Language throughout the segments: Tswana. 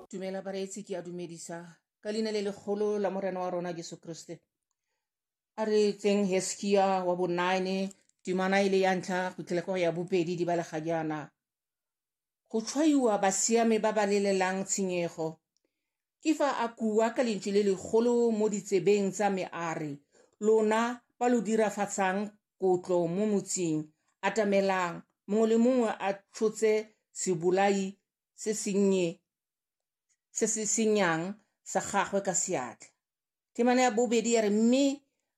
dumela bareetsi ke a dumedisa ka leina le legolo la morena wa rona jesu kriste a re tseng heskia wa bonine timana e le ya ntlha go tlhela kwa ya bobedi di balega jaana go tshwaiwa basiame ba ba lelelang tshenyego ke fa a kua ka lentši le legolo mo ditsebeng tsa me a re, Lona ba lo dirafatsang kotlo mo motseng, atamelang, mongwe le mongwe a tshotse sebolai se sennye se se senyang sa gagwe ka seatla. Temana ya bobedi ya re, mme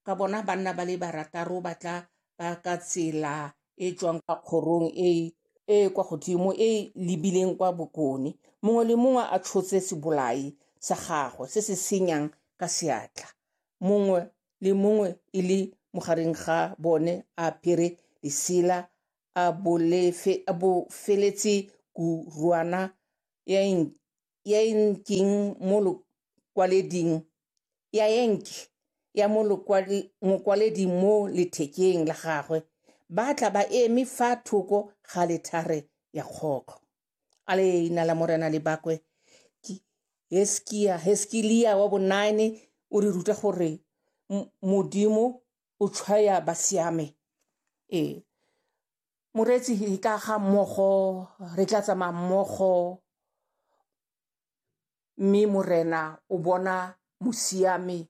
ka bona banna ba le barataro ba tla ba ka tsela e tswang kwa kgorong e e kwa godimo e e lebileng kwa bokone mongwe le mongwe a tshotse sebolai sa gagwe se se senyang ka seatla mongwe le mongwe e le mogareng ga bone a apere lesela a bofeletse kuruana ya ya enkeng mo lokwaleding ya enke ya mo mokwaleding mo lethekeng la gagwe ba tla ba eme fa thoko ga lethare ya kgokgo a leina la morena le bakwe heskia heskilia wa bonine o re ruta gore modimo o tshwaya ba siame ee moreetsi re ka ga mmogo re tla tsamaya mmogo mme morena o bona mosiame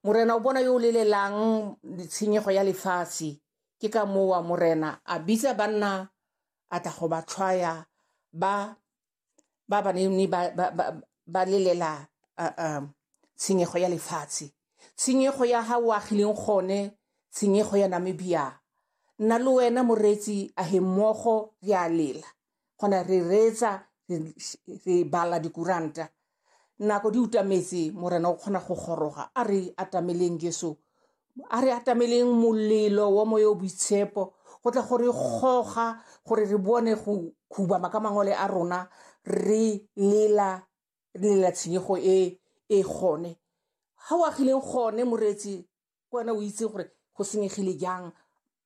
morena o bona yo o lelelang tshenyego ya lefatshe ke ka mowa morena a bitsa banna a tla go ba tshwaya ba ba ba neng ba, ba, ba, ba lelela uh, um, tshenyego ya lefatshe tshenyego ya ga o agileng gone tshenyego ya namibia nna le wena moreetsi a he mmogo re a lela gona re reetsa re bala dikuranta Nako di utametse, Morena o kgona go goroga. A re atameleng Jesu. A re atameleng molelo wa moya o boitshepo go tla gore goga gore re bone go khubama ka mangole a rona re lela re lela tshenyego e e gone. Ha o agileng gone moretsi ke wena o itse gore go senyegile jang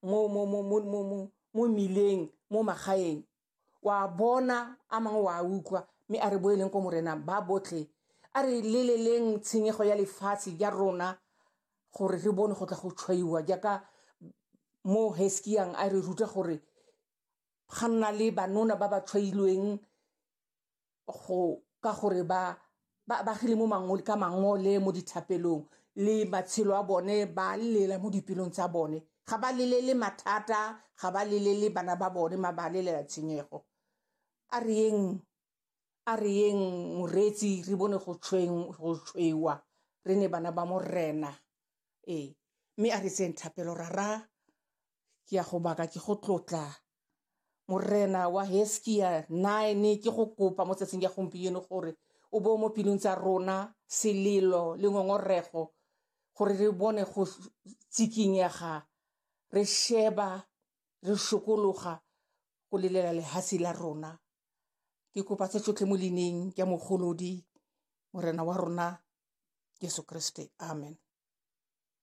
mo mmileng mo magaeng wa bona a mangwe wa utlwa mme a re bo e leng ko morena ba botlhe a re leleleng tshenyego ya lefatshe ja rona gore re bone go tla go tshwaiwa jaaka mo heskiang a re ruta gore ga nna le banona ba ba tshwailweng go ka gore ba ba bagile mo mangole ka mangole mo dithapelong le matshelo a bone ba lela mo dipelong tsa bone ga ba lelele mathata ga ba lelele bana ba bone ma ba lelela tshenyego a re yeng a re yeng moreetsi re bone go tshweng go tshweiwa re ne bana ba morena ee mme a re tseng thapelo rara ke ya go baka ke go tlotla Morena wa Heskia, nine ke go kopa mo tsatsing ya gompieno gore o bo mo pelong tsa rona selelo le ngongorego gore re bone go tsikinyega re sheba re sokologa go lelela lehatshe la rona ke kopa tse tsotlhe mo lineng ke mogolodi morena wa rona jesu kriste amen